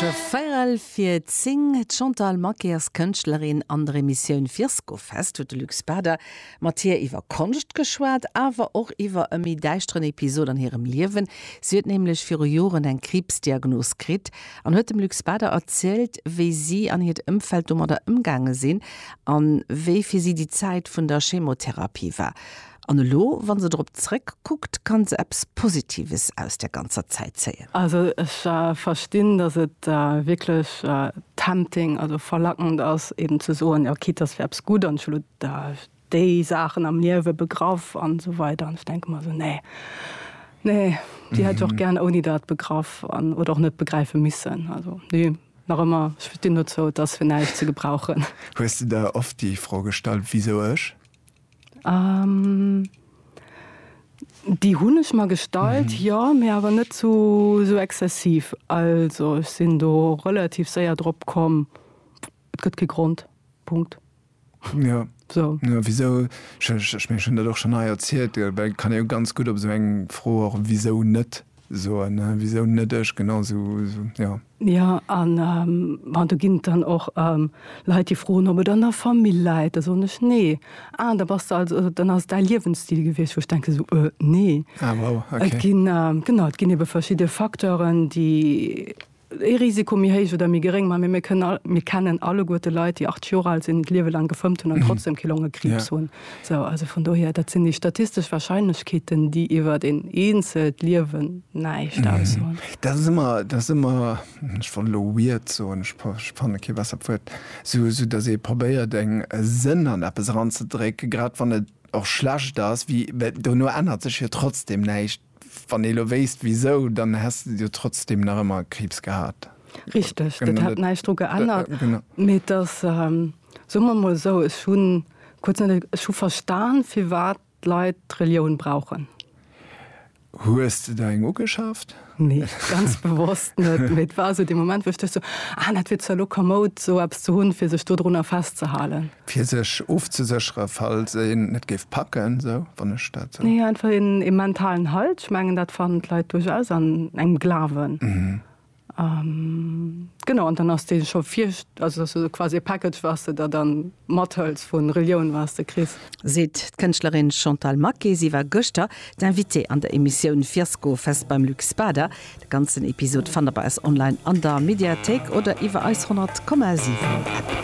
Je feierel fir zing. D'Chantal Maquet ass Kënschtlerin. An der Emissioun Virskofest huet de Luc Spader mat hir iwwer Konscht geschwat, awer och iwwer e méi däischteren Episod an hirem Liewen. Si huet nämlech viru Joren eng Kriibsdiagnos kritt an huet dem Luc Spader erzielt, wéi si an hiert Ëmfeld domadder ëmgaange sinn a wéi fir si déi Zäit vun der Chemotherapie war. An elo, wa se drop zréck kuckt, kann se eppes Positives aus där ganzer Zäit zéien. Also ech verstinn, datt et wierklech tempting, also verlackend ass eben ze soen, jo quitte datt wär eppes gutt an ech hu lo déi Saachen am Liewe begraff an esou weider an ech denke mer esou, nee, nee, déi hätt ech och gären ouni dat begraff an oder och net begräife missen. Also nee, nach ëmmer, ech stinn dozou, et ass fir näischt ze gebrauchen. Hues de der oft déi Fro gestallt, wisou ech? Déi hunn ech mer gestallt, jo, mee awer net zu esou exzessiv. Also ech sinn do relativ séier drop komm, et gëtt kee Grond. Punkt. Jo, wisou? Ech mengen ech hunn dat och schonn hei erzielt, well et kann ee jo ganz gutt op esou eng Fro och wisou net soen, wisou net ech, genau esou, jo. Jo, an bon, do ginn et dann och Leit, déi froen, ob et an der Famill läit. Da soen ech, Nee. Ah, da bass de also, dann ass et däi Liewensstil gewiescht. Wou ech denken, Esou? Nee. Ah, wow, ok. Et ginn, genau, et ginn ebe verschidde Facteuren, déi ee Risiko méi héich oder méi geréng maachen. Mee mir kënnen alleguerte Leit, déi 80 Joer al sinn, d'Liewe laang gefëmmt hunn an trotzdeem kee Longekriibs hunn. Sou, also vun dohier, dat sinn déi statistesch Warscheinlechkeeten, déi iwwert een eenzelt Liewen näischt aussoen. Dat ass ëmmer, dat ass ëmmer, ech wollt elo weird soen, ech fanne kee bessert Wuert, sou datt ee probéiert eng Sënn an eppes eranzedrécken, grad wann et och schlecht ass, well dono ännert sech jo trotzdem näischt. Wann ee lo wéisst wisou, dann häss de jo trotzdem nach ëmmer Kriibs gehat. Richteg, dat hätt näischt dru geännert. Mee et ass, soe mer emol esou, ech hu kuerz net, ech hu verstan, firwat d'Leit d'Relioun brauchen. Hues de der eng ugeschaaft? Nee, ganz bewosst net. Mee et war esou dee Moment, wou ech duecht sou, ah, dat wier zwar lo kamoud, esou eppes ze hunn, fir sech dodrunner festzehalen. Fir sech ofzesécheren, falls een et géif packen, sou, wann ech dat sou. Nee, einfach een, ee mentalen Halt. Ech mengen, dat fannen d'Leit duerchaus an engem Glawen. Genau, an dann ass dee scho vir, also dass du quasi e Package, wat s de der dann mathëls vu Relioun, wat s de kriss. Seet d'Kënschtlerin Chantal Maquet. Si war gëschter d'Invitée an der Emissioun Fiasko Fest beim Luc Spader. De ganzen Episod fannt der bei eis online an der Mediathéik oder iwwer eis 100,7 App.